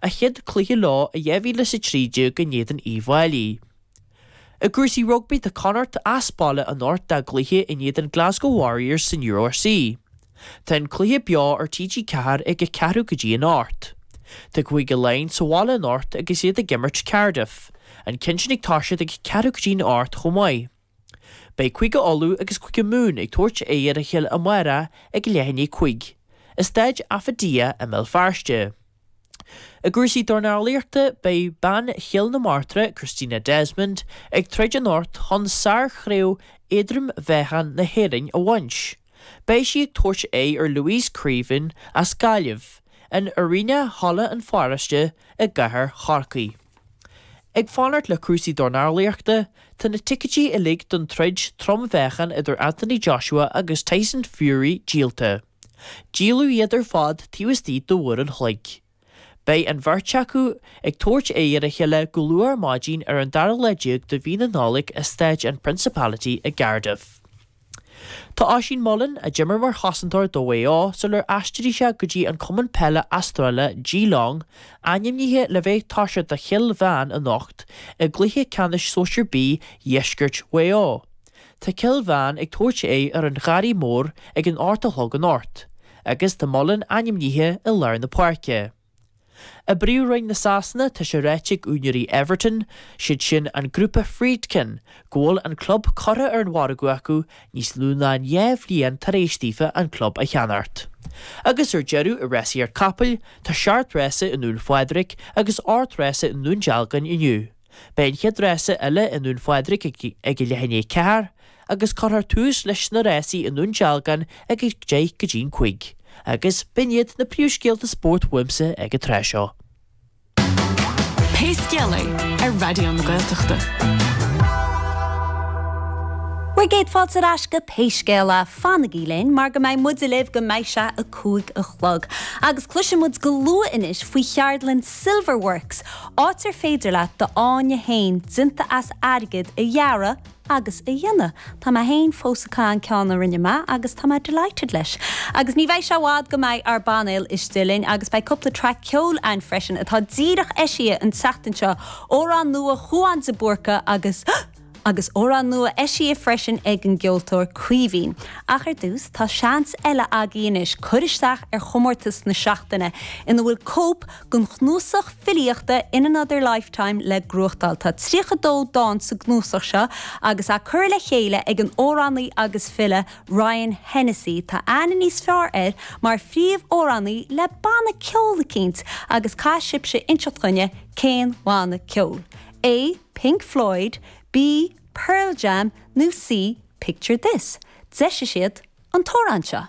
a chéad chluiche leo i 2013 in éadan Uíbh Fháilí. I gcúrsaí rugbaí tá Connacht as baile anocht dá gcluiche in éadan Glasgow Warriors san URC. Tá an cluiche beo ar TG4 ag a ceathrú go dtí an hocht. Tá Cúige Laighean sa bhaile anocht agus iad ag imirt Cardiff. An ceann sin ag toiseacht ag a ceathrú go dtí an hocht chomh maith. Beidh Cúige Uladh agus Cúige Mumhan ag tabhairt aghaidh ar a chéile amárach ag leath i ndiaidh a cúig, i Staid Affidea i mBéal Feirste. I gcúrsaí dornálaíochta beidh bean Chill na Martra, Christina Desmond, ag troid anocht chun sárchraobh éadrom-mheáchain na hÉireann a bhaint. Beidh sí ag tabhairt aghaidh ar Louise Creaven as Gaillimh, in Arena Halla an Pharóiste i gcathair Chorcaí. Ag fanacht le cúrsaí dornálaíochta, tá na ticéidí uilig don troid trom-mheáchain idir Anthony Joshua agus Tyson Fury díolta. Díoladh iad ar fad taobh istigh de uair an chloig. Beidh an bheirt acu ag tabhairt aghaidh ar a chéile go luath ar maidin ar an dara lá déag de mhí na Nollag i Staid an Principality i gCardiff. Tá Oisín Mullin, a d'imir mar chosantóir do Mhaigh Eo sular aistrigh sé go dtí an cumann peile Astráile Geelong, ainmnithe le bheith ag toiseacht do Chill Mheáin anocht i gcluiche ceannais Sóisir B Dheisceart Mhaigh Eo. Tá Cill Mheáin ag tabhairt aghaidh ar an Gharraí Mór ag an hocht a chlog anocht, agus tá Mullin ainmnithe i lár na páirce. I bPríomhroinn na Sasana, tá sé ráite ag úinéirí Everton, siad sin an Grúpa Friedkin, go bhfuil an club curtha ar an mhargadh acu níos lú ná dhá bhliain tar éis daofa an club a cheannacht. Agus ar deireadh, i rásaíocht capall, tá seacht rása i nDún Phádraig agus ocht rása i nDún Dealgain inniu. Beidh an chéad rása eile i nDún Phádraig ag a leath i ndiaidh 4 agus cuirfear tús leis na rásaí i nDún Dealgan ag a 10 go dtí'n 5 agus b'in iad na príomhscéalta spóirt uaimse ag an tráth seo. Pé scéal é, ar Raidió na Gaeltachta. Bhur gcéad fáilte ar ais go Pé Scéal É fanaigí linn mar go mbeidh muide libh go mbeidh sé 5 a chlog. Agus cloisimid go luath anois faoi cheardlann Silver Works, áit ar féidir leat do fháinne féin déanta as airgead a dhearadh agus a dhéanamh. Tá mé féin fós ag caitheamh an ceann a rinne mé agus tá mé delighted leis. Agus ní bheidh sé i bhfad go mbeidh ár bpainéal istigh linn agus beidh cúpla traic ceoil ann freisin atá díreach eisithe an tseachtain seo, amhrán nua Shiubhán de Búrca agus. Agus amhrán nua eisithe freisin ag an gceoltóir Caoimhín. Ach ar dtús, tá seans eile agaibh anois cur isteach ar chomórtas na seachtaine, ina bhfuil cóip den chnuasach filíochta In Another Lifetime le gnóthachtáil. Tá 32 dán sa gcnuasach seo, agus é curtha le chéile ag an amhránaí agus file, Ryan Hennessy. Tá aithne níos fearr air mar phríomh-amhránaí le banna ceoil eicínt, agus caithfidh sibhse inseacht dhúinne cén bhanna ceoil é! Pink Floyd, B, Pearl Jam nó C, Picture This? Deir siad an t-amhrán seo.